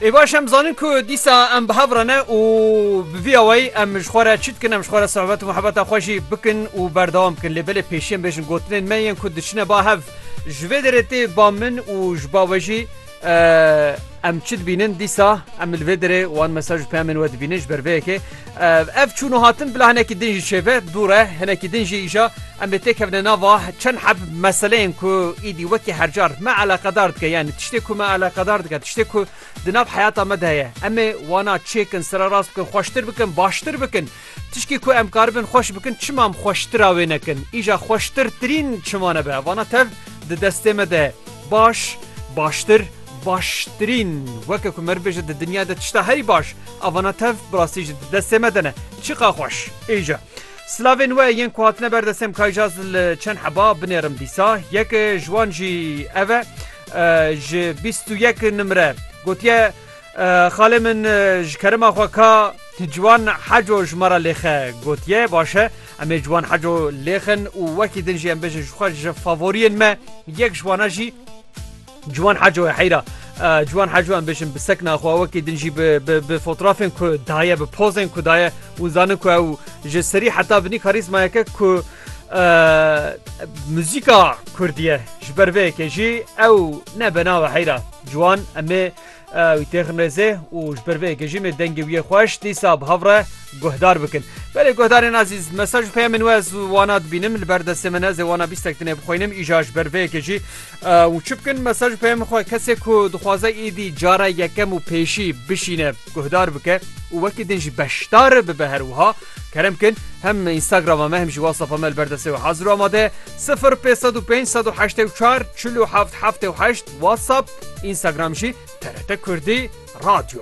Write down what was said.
Ê baş em zanin ku dîsa em bi hev re ne û bi vî awayî em ji xwe re çi dikin em ji xwe re sohbet û muhebeta xwe jî bikin û berdewam bikin lê belê pêşî em bêjin gotinên me yên ku diçine ba hev ji vê derê tê ba min û ji ba we jî em çi dibînin dîsa em li vê derê wan mesaj û peyamên we dibînin ji ber vê yekê Ev çûn û hatin bila hinekî din jî çêbe dûr e, hinekî din jî îja em ê têkevine nava çend heb meseleyên ku îdî wekî hercar me eleqedar dike yanî tiştê ku me eleqedar dike tiştê ku di nav heyata me de heye em ê wana çêkin sererast bikin xweştir bikin baştir bikin tişkî ku em karibin xweş bikin çima em xweştira wê nekin îja xweştirtirîn çima nebe vana tev di destê me de baş baştir Baştirîn, weke ku me bêje di dinya de tişta herî baş a vana tev bi rastî jî di destê me de ne. Çiqa xweş. Îja. Silavên we yên ku hatine ber destê em kayja ez li çend heba binêrim dîsa. Yek ji wan jî ev e ji bîst û yek nimre gotiye Xalê min ji kerema xwe ka Ciwan Heco ji me re lêxe gotiye. Baş e em ê Ciwan Heco lêxin û wekî din jî em bêjin ji xwe ji favoriyên me yek ji wana jî Ciwan Heco ye heyra Ciwan Heco em bêjin bi sekna xwe wekî din jî bi fotoğrafên ku daye bi pozên ku daye û zanin ku ew ji serî heta binî karîzmayeke ku muzîka Kurdiye ji ber vê yekê jî ew ne benawe heyra Ciwan em ê Ew têxin rêzê û ji ber vê gejîmê dengê wî yê xweş dîsa bi hev re guhdar bikin. Belê guhdarên azîz, mesaj û peyamên we ez wana dibînim li ber destê min ez ê wana bîstek din ê bixwînim îja ji ber vê yekê jî û çi bikin mesaj û peyamên xwe kesê ku dixwaze êdî cara yekem û pêşî bişîne guhdar bike û wekî din jî beşdar bibe her wiha kerem bikin hem Instagrama me hem jî WhatsAppa me li ber destê we hazir û amade ye sifir pênc sed û pênc sed û heştê û çar çil û heft heftê û heşt WhatsApp, Instagram jî TRT Kurdî, Radyo.